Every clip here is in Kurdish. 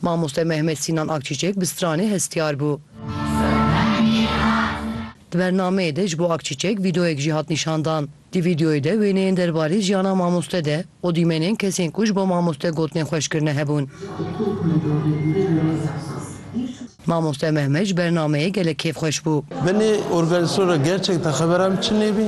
Mamoste Mehmet Sînan Akçîçek bi stranê hestiyar bû. Di bernameyê de ji bo Akçîçek vîdeoyek jî hat nîşandan. Di vîdeoyê de wêneyên derbarê jiyana mamoste de û dîmenên kesên ku ji bo mamoste gotinên xweş kirine hebûn. Mamoste Mehmet ji bernameyê gelek kêfxweş bû. Benê organizasyon ra gerçekten xeberan çi nêbî.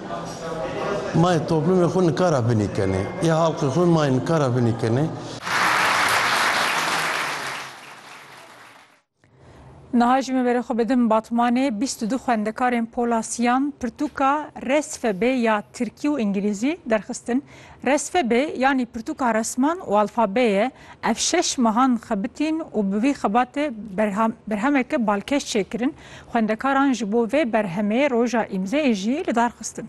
Mayê toplumê xwe nikara binî kenê. Yê halqê xwe mayê nikara binî kenê. Niha jî me berê xwe bidim Batmanê bîst û du xwendekarên pola siyan pirtûka resfebê ya tirkî û îngilîzî derxistin. Resfebê yanî pirtûka resman û alfabê ye. Ev şeş mehan xebitîn û bi vî xebatê berhemeke balkêş çêkirin. Xwendekaran ji bo vê berhemê roja îmzeyê jî li dar xistin.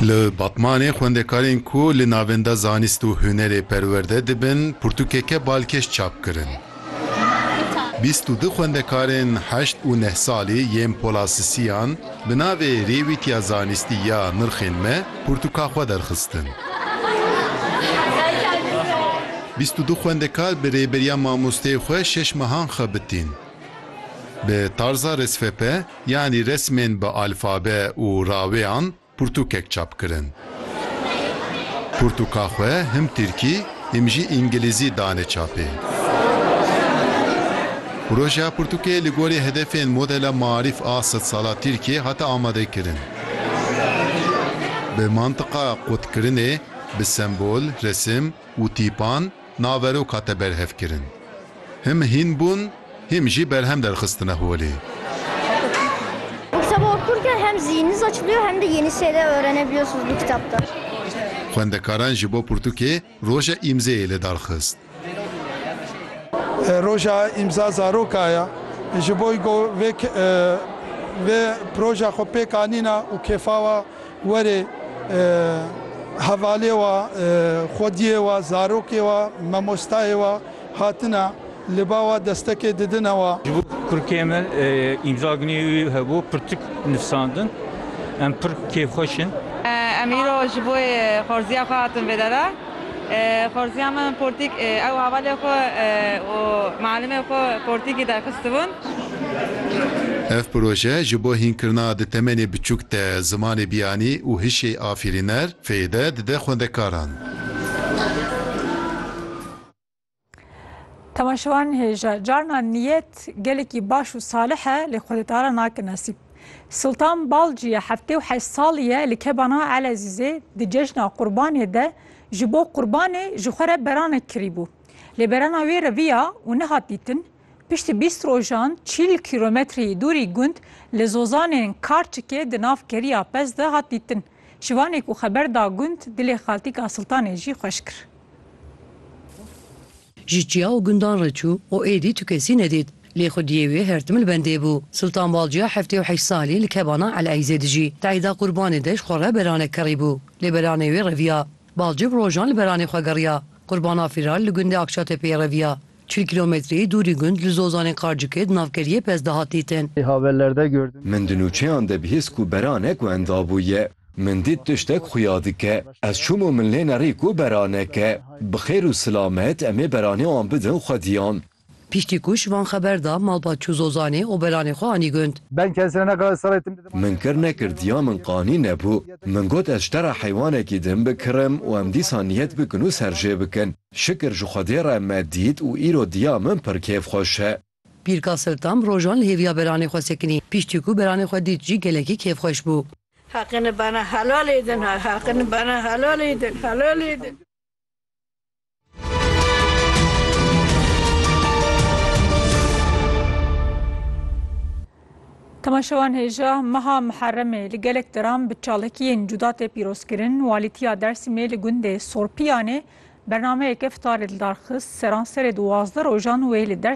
Li Batmanê xwendekarên ku li Navenda Zanist û Hunerê perwerde dibin pirtûkeke balkêş çap kirin. Bîst û du xwendekarên heşt û neh salî yên Pola Sisiyan, Bi navê Rêwîtiya Zanistî ya Nirxên Me pirtûka xwe derxistin. Bîst û du xwendekar bi rêberiya mamosteyê xwe şeş mehan xebitîn. Bi tarza resfepe yanî resmên bi alfabe û rawêyan pirtûkek çap kirin. Pirtûka xwe him tirkî him jî îngilîzî dane çapê. Projeya pirtûkê li gorî hedefên modela Maarîf a sed sala Tirkiyê hate amadekirin. Bi mantiqa qutkirinê, bi sembol, resim û tîpan, naverok hate berhevkirin. Him hîn bûn, hîm jî berhem derxistine holê. Bu kitabı okurken hem zihniniz açılıyor hem de yeni şeyler öğrenebiliyorsunuz bu kitaptan. Xwendekaran ji bo pirtûkê Roja Îmzeyê li dar xist. Roja Îmza Zaroka ya. Ji bo ku vê proja xwe pêk anîna û kêfa we Were hevalê wa, xwediyê wa, zarokê wa, memostayê wa hatine li ba wa destekê didine wa. Ji bo kurikê me îmza gunê wî hebû pirtik nifsandin. Em pir kêfxweş in. Em îro ji bo xorziya xwe hatin vêdera. Xorziya me min portîk ew hevalê xwe û mialimê xwe portîkî derxistibûn. Ev proje ji bo hînkirina di temenê biçûk de zimanê biyanî û hişê afirîner fêyde dide xwendekaran. Temaşewan hêja carna niyet gelekî baş û salih e lê xwedîdara nake nesîb. Sultan Balciye heftê û heşt salî ye li kebana Elezîzê di cejna qurbanê de ji bo qurbanê ji xwe re beranek kirîbû. Lê berana wê reviya û nehat dîtin. Piştî bîst rojan çîl kîlometreyî dûrî gund li Zozanên Karçikê di nav keriya pez de hat dîtin. Şivanê ku xeber da gund, dilê Xaltîk a Siltanê jî xweş kir. Ji çiya û gundan re çû û êdî tu kesî nedît. Lê xwediyê wê her tim li bendê bû. Siltan Balciya heftê û heşt salî li kebana Eleîzê dijî. Teîda Qurbanê de ji xwe re beranek kerîbû. Lê beranê wê reviya. Balci bi rojan li beranê xwe geriya. Qurbana Fîral li gundê Akçatepeyê reviya. Çil kîlometreyî dûrî gund li Zozanê Qarcikê di navkeriyê pez de hat dîtin. Min di nûçeyan de bihîst ku beranek wenda bûye. Min dît tiştek xuya dike. Ez çûm û min lê nerî ku beranek e. Bi xêr û silamet em ê beranê wan bidin xwediyan. Piştî ku ji van xeber da, malbat çû Zozanê û beranê xwe anî gund. Min kir nekir diya min qanî nebû. Min got ez ji te re heywanekî din bikirim û em dîsa niyet bikin û serjê bikin. Şikir ji Xwedê re me dît û îro diya min pir kêf xweş e. Pîrka Siltam rojan li hêviya beranê xwe sekinî. Piştî ku beranê xwe dît jî gelekî kêf xweş bû. Haqin bana helal edin Haqin bana helal edin Helal edin. Temaşevan hêja meha Miherremê li gelek deran bi çalakiyên cuda tê pîrozkirin. Walîtiya Dersîmê li gundê Sorpiyanê bernameyeke fitarê li dar xist. Seranserê duwazdeh rojan wê li Dersîmê